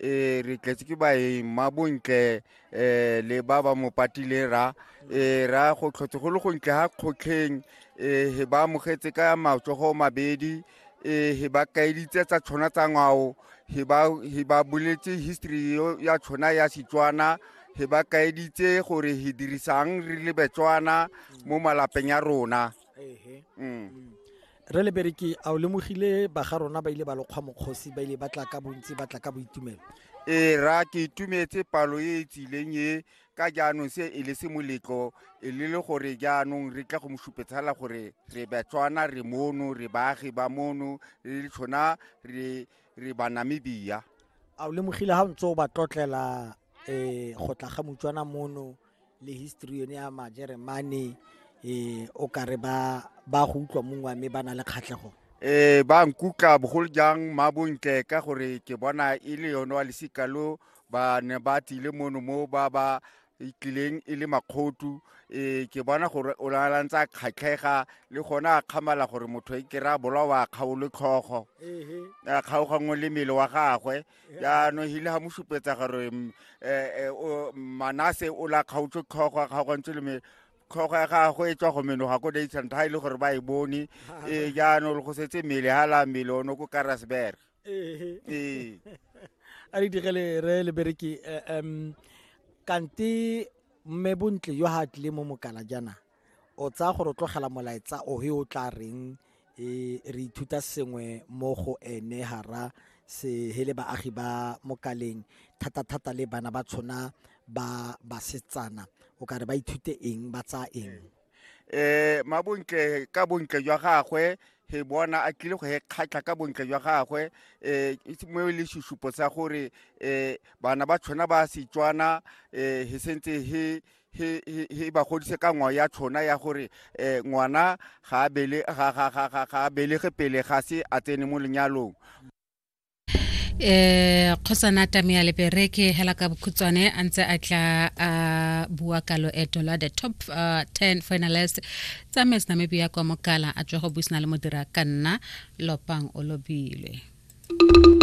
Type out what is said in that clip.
e re tletse ke baeng ma bontle um le ba ba mo patile ra e ra go tlhotshe go le gontle ga kgotlheng um he ba amogetse ka matsogo mabedi um he ba kaeditse tsa tshona tsa ngwao he ba boletse history ya tshona ya setswana he ba kaeditse gore he dirisang re le betswana mo malapeng ya rona mm. re le bereke a o lemogile ba ga rona ba ile ba lokgwa mokgosi ba ile ba tla ka bontsi ba tla ka boitumelo ee ra ke itumetse palo e e tsileng e ka jaanong se e le se moletlo e le le gore jaanong re tla go mosupetsala gore re batswana re mono re baagi ba mono re le tshona re re banamibia a o lemogile ga o ntse o ba tlotlela um go tla ga motswana mono le history yone ya majeremane um o kare ba ba go utlwa mongwe mme ba na le kgatlhego um ba nkukla bogolo jang mabontle ka gore ke bona e le yone wa lesika lo ba ne ba tlile mono mo ba ba itlileng e le makgotu um ke bona gore o nalantse a kgatlhega le gone a kgamala gore motho e kry-a bolawa kgaolo tlhogo a kgaogangwe le mmele wa gagwe jaanong hile ga mo supetsa gore um manase o la kgaotse tlhogo a kgaogantse le me tlhogo ya gagwe e tswa go menoga ko daisanta ga e le gore ba e bone ee jaanong go setse mmele ga la mmele ono ko karasberg ee a re digele re le bereki um kante mme bontle yo ga tlile mo mokala jaana o tsaya gore o tlogela molaetsa o he o tla reng e re ithuta sengwe mo go ene hara se hele baagi ba mokaleng thata-thata le bana ba tshona ba basetsana o ka re ba ithute eng ba tsaya eng eh ma bontle ka bontle jwa gagwe he bona a tlile go he kgatlha ka bontle jwa gagwe eh mo le susupo sa gore eh bana ba tshwana ba setswana eh he sentse he he ba godise ka ngwao ya tshona ya gore um ngwana ga a belege pele ga se a tsene mo lenyalong eh khosana tamia lepereke hela ka bokhutswane a ntse a tla a bua ka loeto la the top uh, 10 finalist tsa mes namibia kwa mokala a tswa go buisana le modira ka nna lopang o lobile